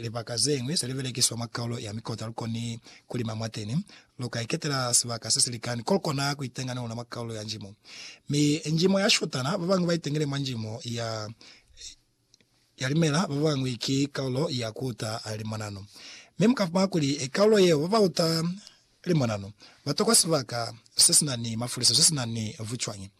Libaka zeñwi ze li belekiswa mwa kaulo ya mikota lu koni ku lima mwateni. Lu ka iketela sibaka se si likani ko lu kona ku itenga ni luna mwa kaulo ya njimo. Mi njimo ya shotana, ba bañwi ba itengile mwa njimo ya ya limela, ba bañwi ki kaulo ya ku uta limonano. Mi mu ka fumana kuli kaulo yeo ba ba uta Ili mwananu, batokwa sibaka sesina ni mafuliso, sesina ni vucwañi.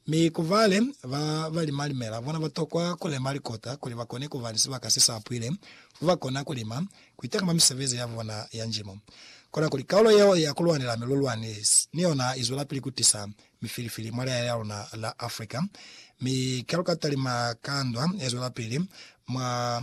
Mi ku bale ba ba lima limela, bona batokwa ku lema likota kuli bakone kuba ni sibaka se sa pwile fo ba kona ku lima, ku itakama misebezi ya bona ya njimo. Kona kuli kaulo yeo ya ku lwanela milulwani ni yona i zwelapili ku tisa mifilifili mwa leya ya luna la Africa, mi kaluka talima ka ndwa ye zwelapili mwa.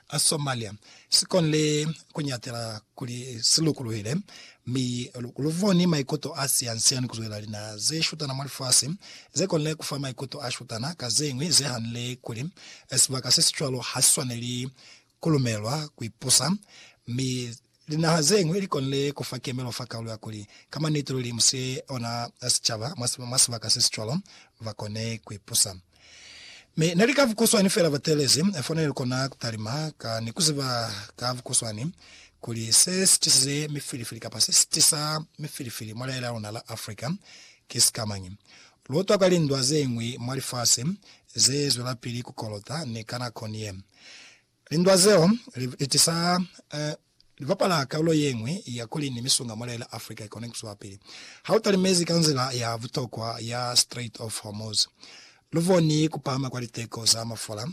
a Somalia si konile ku ñatela kuli si lukuluhile, mi lu boni maikuto a sian-sian ku zwela linaha ze shutana mwa lifasi ze konile ku fa maikuto a shutana ka ze ñwi ze hanile kuli sibaka se si cwalo ha si swaneli ku lumelwa ku ipusa, mi Linaha ze ñwi li konile ku fa kemelo fa kaulo ya kuli, ka maniti luli mu si ona sicaba mwa sibaka se si cwalo, ba kone ku ipusa. Mi ne li ka vukuswani fela ba teelezi, fo ne li kona ku talima ka ni ku ziba ka vukuswani kuli se si tisize mifilifili kapa se si tisa mifilifili mwa lihae la luna la Africa ki sikamañi. Lu utwa ka lindwa ze ñwi mwa lifasi ze zwelapili ku kolota ni ka nakoni ye. Lindwa zeo li itisa li bapala kalulo ye ñwi ya kuli ni misunga mwa lela Africa i kone ku zwapili. Ha u talimezi ka nzila ya butokwa ya Strait of Hormuz, lu boni ku pahama kwa liteko za mafula,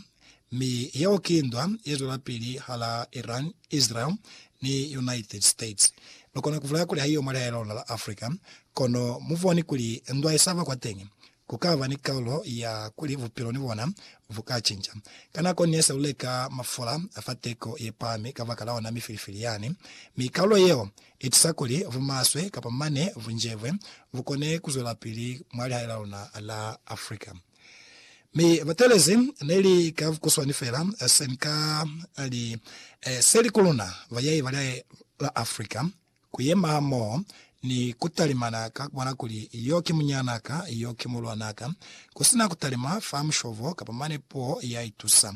mi yeo ki ndwa ye zwelapili hala Iran, Israel, ni United States. Lu kona ku bulaya kuli haiyo mwa lihae la luna la Africa, kono mu boni kuli ndwa i sa ba kwateñi ku ka ba ni kaulo ya kuli bupilo ni bona bu ka cinca. Ka nako ne sa luleka mafula a fa teko ye pahami kabakala ona mifilifili yani, mi kaulo yeo i tusa kuli bumaswe kapa mane bu njebwe bu kone ku zwelapili mwa lihae la luna la Africa. Mi batelezi ne li ka bukuswani fela se ni ka li, Se li ku luna, bayai ba lihae la Africa, Kuyema hamoho ni kutalimana ka kubona kuli yo ki munyana ka, yo ki mulwana ka, kusina kutalima fa mushovo kapa mane puo ya itusa.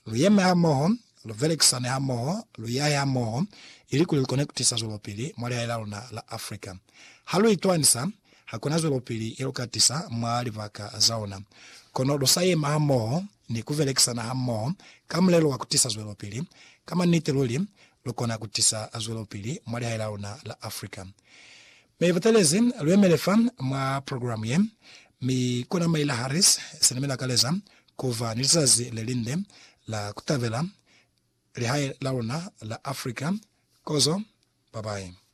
Luyeme hamoho, luvelekisane hamoho, luyahe hamoho, ilikuli lukone kutisa zwelopili mwa lihae laluna la Africa. Ha lu itwanisa, hakuna zwelopili yeluka tisa mwa libaka zaona. Kono lusa yema hamoho ni kuvelekisana hamoho ka mulelo wa kutisa zwelopili, ka maniti luli lu kona ku tisa zwelopili mwa lihae la luna la Africa. Mi butelezi lu yemele fa mwa program ye, mi kona Maila Harris sina mi lakaleza ku ba ni lizazi le linde la ku tabela lihae la luna la Africa kozo. Babayi.